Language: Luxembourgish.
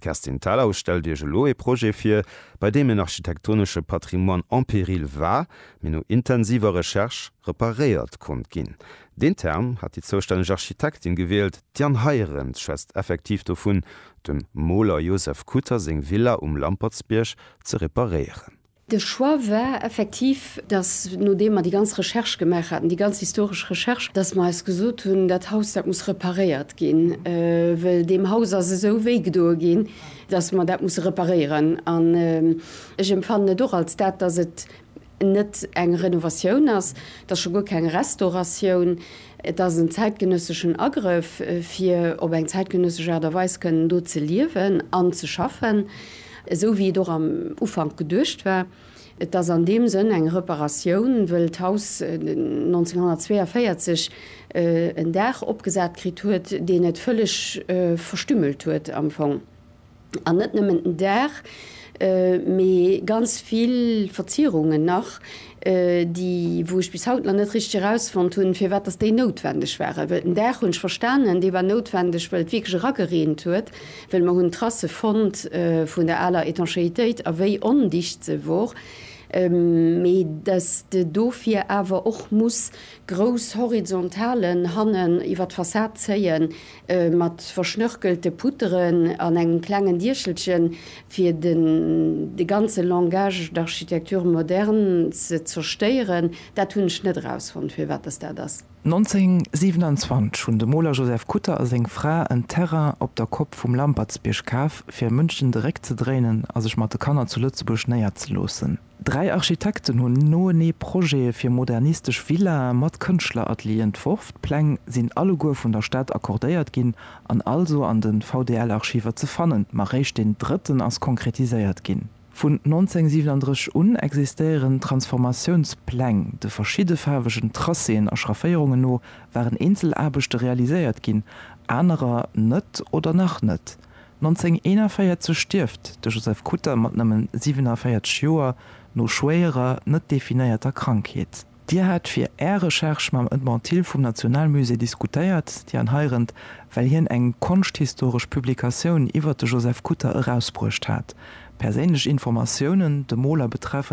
D'Kerstin Thalau stellt Iech elo ee Projet vir, bei deem en architektonesche Patrimoine en péril war, mee no intensiver Recherche reparéiert konnt ginn. Deen Term hat déi zoustänneg Architektin gewielt, d'Diane Heiren schwätzt effektiv dovun, dem Moler Joseph Kutter seng Villa um Lampertsbierg ze reparéieren. De Choix war effektiv, dass, nodeem mer déi ganz Recherche gemaach haten, déi ganz historesch Recherche, dass mer eis gesot hunn, Dat Haus, dat muss reparéiert ginn, wëll deem Haus ass esou wéi gedoe ginn, dass mer dat musse reparéieren. An ech empfannen et och als dat, dass et net eng Renovatioun ass, et ass scho guer keng Restauratioun, Et ass en zäitgenësseschen Agrëff, fir op eng zäitgenëssesch Aart a Weis kënnen do ze liewen an ze schaffen, esou wéi et och am Ufank geduecht war. Et ass an deem Sënn eng Reparatioun, wëll d'Haus 1942 en Daach opgesat kritt huet, deen et vëlleg verstümmelt huet am Fong. An net nëmmen den Daach, mee ganz vill Verzierungen nach, déi, wou ech bis haut nach net richteg erausfonnt hunn, firwat dass déi noutwendeg waren. Well den Daach hunn ech verstanen, dee war noutwendeg, well et wierklech eragereent huet, well mer hunn Trasse fonnt vun der aler Étanchéitéit a wéi ondicht se wor. Mee dass de dofir awer och muss grouss Horizontalen hannen iwwer d'Fassad zéien, Mat verschnörkelte Putteren an engem klengen Diechelchen, fir den de ganze Langage d'architecture moderne ze zerstéieren, dat hunn ech net erausfonnt, firwat dass dat ass. 1927 hunn de Moler Joseph Kutter a seng Fra en Terrain op der Kopp vum Lampertsbierg kaf, fir München de Réck ze dréinen a sech mat de Kanner zu Lëtzebuerg néierzeloossen. Dräi Architekten hunn noenee Projete fir modernistesch Villae mat Kënschtleratelier entworf. D'Pläng sinn alleguer vun der Stad accordéiert ginn an also an de VDL-Archiver ze fannen, ma réischt deen drëtten ass konkretiséiert ginn. Vun 1937 un existéieren d'Transformatiounspläng. De verschidde faarwegen Tracéen a Schrafféierungen no waren eenzel Aarbechte realiséiert ginn, anerer net oder nach net. 1941 stierft de Joseph Kutter mat nëmmen 47 Joer no schwéierer, net definéierter Krankheet. Dir hat fir Är Recherche mam Edmond Thill vum Nationalmusée diskutéiert, déi an heirent, well hien eng konschthistoresch Publikatioun iwwert de Joseph Kutter erausbruecht hat, perséinlech Informatiounen dem Moler betreffend